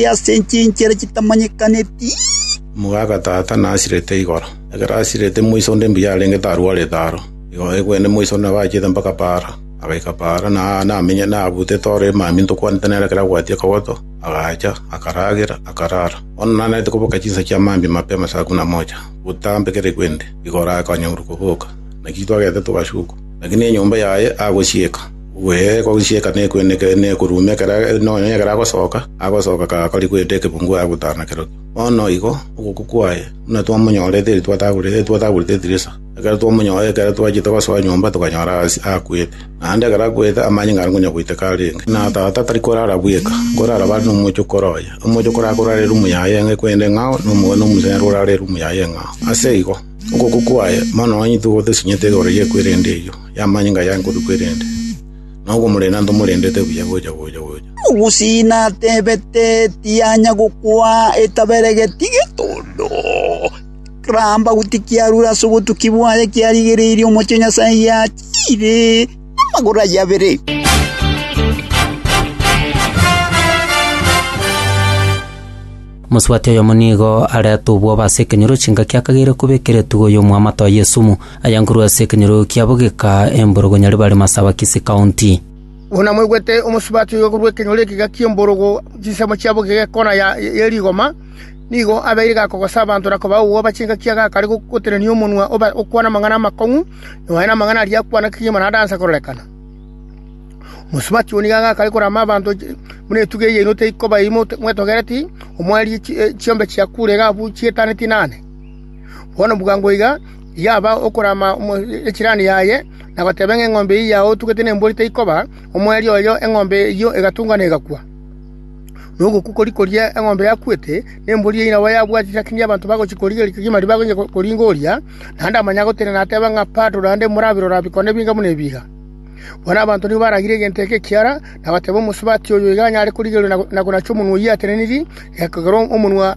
aye ase enchera y'enchera chitamanyekaneti. Mogaaka Tata nasirete igoro. Ekero asirete moise onde mbuya arenge tarwarete aro. Igo egwene moise onde nabo achete mpaka paara, agaika paara, na aa namenye nabutete ore emambia ntokwanete nere ekero abwatia akagoto, agacha, akaragera, akarara. Bono nanarete koboka chinsa chia mambia mapema saa kumi na mocha, botambe kera egwende, igoro akanyaurwa koboka. Naki twagete togashukwa, lakini enyomba yaye agosieka. Bwegoisieka nekoeneka nekoruuma ekero nonya ekero agosoka, agosoka kagakori goeta ekebungu agotana kerokio. Bono igo ogokwa kwaye buna twamonyorete eri twatagorete eri twatagorete etirisa, ekero twamonyora ekero twachete gosoa nyomba tokanyora as- akwete. Naende ekero akwete amanye ng'a aringonya goiteka arenge. Na tata tari korara bweka, nkorara bare nomochoko roye. Omochoko orakorara erumu yaye ng'a ekwende ng'ao, na omoga na omoseeri orare erumu yaye ng'ao. Ase igo, ogokwa kwaye bono onye tigo tosinyete igoro y'ekwerende eyio. Y'amanyinga yaye nkoduka erende, na okomorenda ntomorendete buya gocha gocha gocha. Ogusie natebete, Tianya gokwa, etaberegeti getondo. Ramba goti kiarure ase obotuki bwaye, kiarigereirie omochie o Nyasae giachire namagoro ayio abere. Mosubati oyomo nigo aretubwa obo ase ekenyoro chingaki akageire koba ekeretu goyomwa amato aye esumu. Aya nkorwa ase ekenyoro kiabo geka emborogo nyare bare Masaba Kisii County. Buna mwaigwete omosubati oyo korwa ekenyoro ekega ki'emborogo chinsemo chiabo geka ekona ya rigoma, nigo abeire gakogosa abanto na kobagogoba chingaki agakare gotenenia omonwa obe okwana amang'ana amakong'u, nonya namang'ana aria akwana kegima naende ansa kororekana. Omosubati oyo nigo agakare korama abanto buna etugi eyainote ikoba eyio mwetogereti, omoerie chiombe chia kure iga abwo chietane tinane. Bono bwango iga yaba okorama echirani yaye, na goteba ng'a eng'ombe eyio yaotugete nembori teikoba, omweerio oyo eng'ombe eyio egatunga na egakwa. Na ogokwa koria koria eng'ombe yakwete, nembori eyio nabo yabwati lakini abanto bagochia korigereria kegima ribaga onye koringa oria, naende amanye agotenena ateba ng'a Bado naende morabire oraba bikone ebinga buna ebiiga. Bono abanto nigo baragire egento eke ekiara, na goteba, Omosubati oyo iga anyare korigereria na konachia omonwa oyio atenenirie, ekero omonwa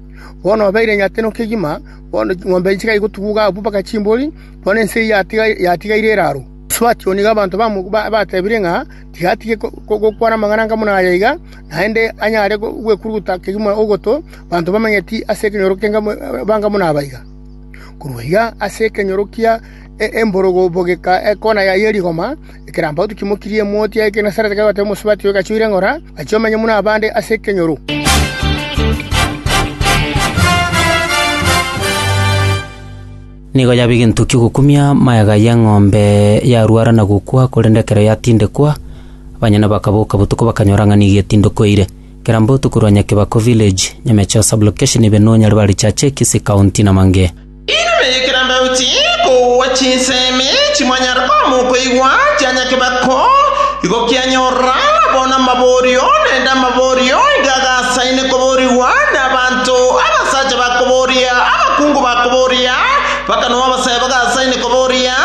Bono obeire nyateno kegima, bono ching'ombe echi chikagenda chigatuguuka abwo mpaka chimbori, bono ense eyio yatigaire eraaro. Asuachio nigo abanto batebirie ng'a tigatige gokwana amang'ana anga buna aya iga, naende anyare gwekuruguta kegima ogoto abanto bamanyeti ase ekenyoro banga buna aba iga. Korwa iga ase ekenyoro kia emborogo bogeka ekona yaye ye rigoma. Ekerampauti kimokirie emoti ya Genesareti kegwete omosubati oyo gachiire ng'ora, gachia omenya buna abande ase ekenyoro. Nigo yaba egento ki'ogokumia magega y'eng'ombe yarwara na gokwa, korende ekero yatindekwa, abanyene bakaboka botuko bakanyora ng'a nigo etindekwa eire. Ekerampauti korwa Nyakebako Village, Nyamecheo Sub-location, Ebenoo, Nyaribari Church, Kisii County, Namange. Inwe ekerambaoti, kogwa chinsemi chimwanyare koamwa okoigwa chia nyakebeko, igo kianyorora abo namaborio, naende amaborio nigo agasaine koborigwa nabanto, abasacha bakoboria, abakungu bakoboria, mpaka nao abasae bagasaine koboria,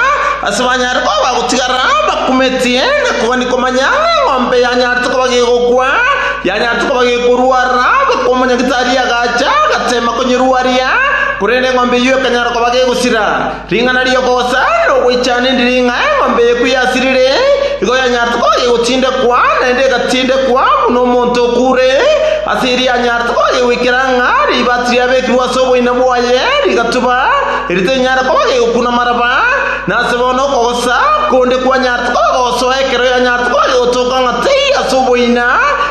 ase banyare kogwa gotigara bakumetie, na kogania komanya ng'a eng'ombe yanyarete koba gegokwa, yanyarete koba gekoruara, goika omonyagitari agacha, agateema konyeruaria. Korende eng'ombe eyio ekanyara koba gegosira. Ring'ana ri'ogocha na ogoichana endi riri ng'a eng'ombe eye ekwo yasirire, igo yanyarete koba gegotindekwa, naende egatindekwa, buna omonto okure, ase erio yanyarete koba gegoikera ng'a ribaati riabekirwe ase oboina bwaye rigatuba, erio terinyare koba gegokuna maraba, na ase bono okogocha konde kwanyarete koba gogosoa ekero yanyarete koba gegotoka ng'a teiyo ase oboina,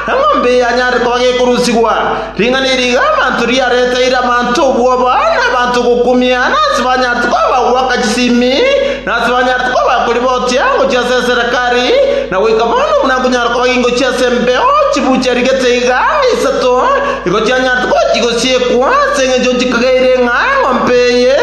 eng'ombe eye yanyarire koba gekorusigwa. Ring'ana eri iga abanto riareteire abanto obwoba, na abanto gokumiana, ase banyarete koba bagoaka chisimi, na ase banyarete koba bakoribotia ngochia ase eserekari, na goika bono buna nkonyara koba gingochia ase embeo chiburu chiarigete iga ang'e isato, nigo chianyarete koba chigosiekwa, ase engencho nchikageire ng'a eng'ombe eye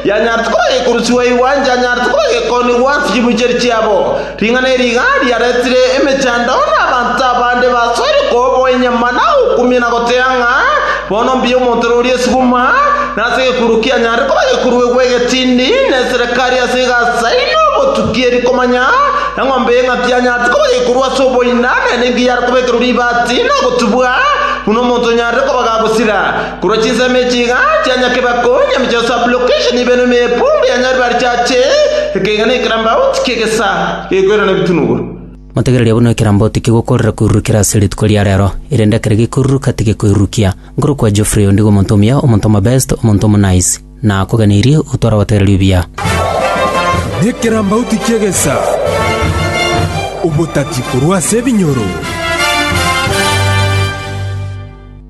yanyarete koba gekorusigwa igwa enchanyarete koba gekoonigwa ase chiburu chiaria chiabo. Ring'ana eri iga riaretire emechando na abanto abande basoire koboa enyama na gokumia na gotea ng'a, Bono mbuya omonto ore oria esibuma, na ase egekururo kianyare koba egekururo egwe egetindi, na eserekari ase egasa eye na obotuki eri komanya eng'ombe y'eng'aki yanyarete koba egekururo ase oboina, naende enki yare koba ekerori ibati na ogotubwa, buna omonto onyarire koba gagosira. Korwa chinsemo echi iga chianyaka ebakonye ime chia sublocation ibe nonya epundu ya nyaribari chiache ekeiga na ekerambauti ki'egesa gekoirana ebitunuguru. Motegererie buna ekerambauti kigokoorera koirurukera ase rituko ria reero, erinde ekero gekoiruruka tigekoirurukia. Nkorokwa Geoffrey ondigo omonto omuya, omonto omobest, omonto omo-nice. Nakoganeirie outwe oragotegereri obuya. Nekerambauti ki'egesa, obotati korwa ase ebinyoro.